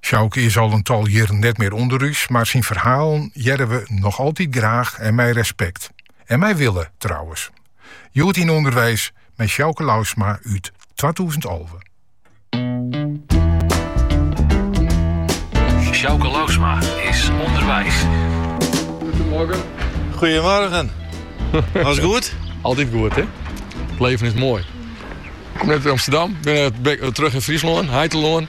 Sjouke is al in tal jierren net mear ûnder ús, mar syn ferhalen hearre we noch altyd graach en mei respekt. En mei wille, trouwens. Hjoed yn Underweis mei Sjouke Lousma út twatûzen alve. Sjouke Lousma is ûnderweis. Goedemorgen. Goedemorgen. Alles goed? Altijd goed, hè? Het leven is mooi. Ik kom net uit Amsterdam, ben terug in Friesland, Heitelân.